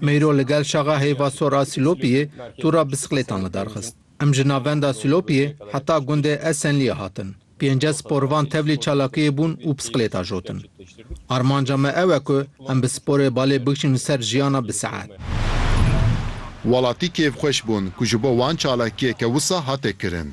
Meyro li gel şaxa heyva sor a Silopiyê tûra bisiklêtan li dar xist. Em ji navenda Silopiyê heta gundê Esenliyê hatin. Pênced sporvan tevlî çalakiyê bûn û bisiklêta jotin. Armanca me ew e ku em bi sporê balê bikişîn ser jiyana bi saet. Welatî kêfxweş bûn ku ji bo wan çalakiyeke wisa hate kirin.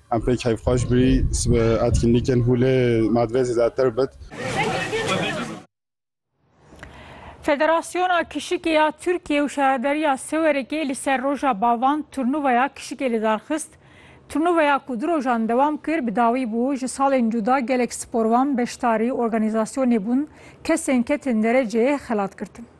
Em pêk hevxweş bû sibe etkinlîkên hûlê madve zêdetir bit. Federasyona Kişikê ya Tirkiye û Şaredariya Sewerekê li ser roja bavan turnuvaya kişikê li dar xist. Turnuvaya ku du rojan dewam kir bi dawî bû, ji salên cuda gelek sporvan, beşdarî, organîzasyonê bûn, kesên ketin dereceyê xelat girtin.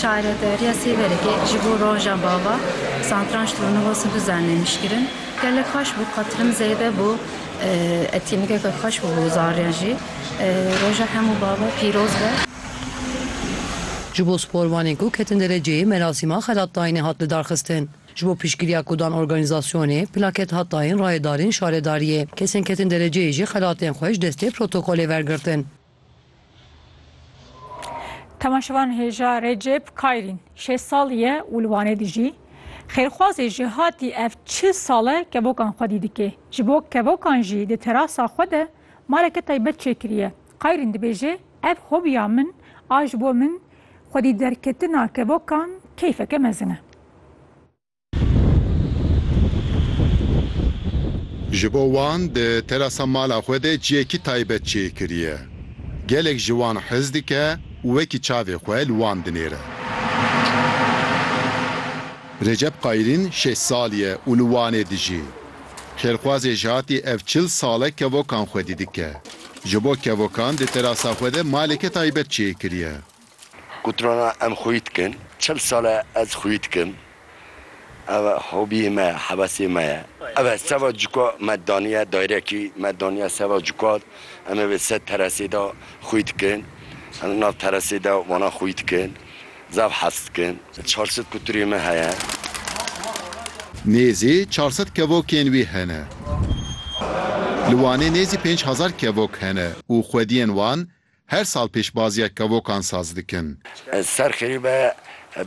Çaredariya Sêverekê ji bo roja bava santranç turnuva Sidû Zernê nişkirin. Gelek xweş bû, qatilim zêde bû, etînîgeke xweş bû bo zariyan jî. Roja hemû bava pîroz be. Ji bo sporvanên ku ketin dereceyê merasîma xelatdayînê hat lidarxistin. Ji bo piştgiriya ku dan organîzasyonê, plaket hat dayîn rayedariên şaredariyê. Kesên ketin dereceyê jî xelatên xwe ji destê protokolê wergirtin. Temaşevan hêja Recep Kayrîn şêst salî ye û li Wanê dijî. Xêrxwazê ji hatî ev çil sal e kevokan xwedî dike. Ji bo kevokan jî di terasa xwe de maleke taybet çêkiriye. Kayrîn dibêje, Ev hobiya min a ji bo min xwedî derketina kevokan keyfeke mezin e. Ji bo wan di terasa mala xwe de cihekî taybet çê kiriye. Gelek ji wan hez dike û wekî çavê xwe li wan dinêre. Recep Qayirîn şeş salî ye û li Wanê dijî. Xêrxwazê ji hatî ev çil sal e kevokan xwedî dike. Ji bo kevokan di terasa xwe de maleke taybet çê kiriye. Qutrana em xwî dikin. Çil sal e ez xwî dikim. Ev hobiyê me ye, hevesê me ye. Ev e seva cuka me daniye dayrekî, me daniye seva cuka. Em ê vê sed teresê de xwî dikin. Em nav teresê de wana xwî dikin. Zaf hez dikim. Çar sed qutrê me heye. Nêzî çar sed kevokên wî hene. Li Wanê nêzî pênc hezar kevok hene û xwediyên wan Her sal pêşbaziya kevokan saz dikin. Ser xerîbe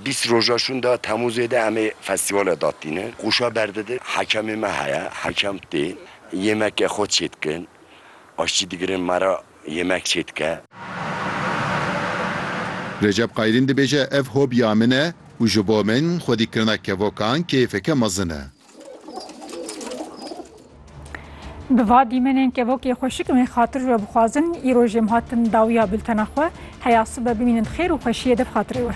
bîst roja şûnda Temûzê de em ê festîvala dadtînin. Qoşa berdidin, hekemê me heye, hekem tê. Yêmeke xwe çê dikin. Aştî digirin me re yêmek çê dike. Recep Qayirîn dibêje, Ev hobiya min e û ji bo min xwedîkirina kevokan kêfeke mezin e. Bi va dîmenên kevokê xweşik wê xatir ve bixwazin îro jê em hatin dawiya bultena xwe. Heya sibe bimînin xêr û xweşiyê di bi xatirê we.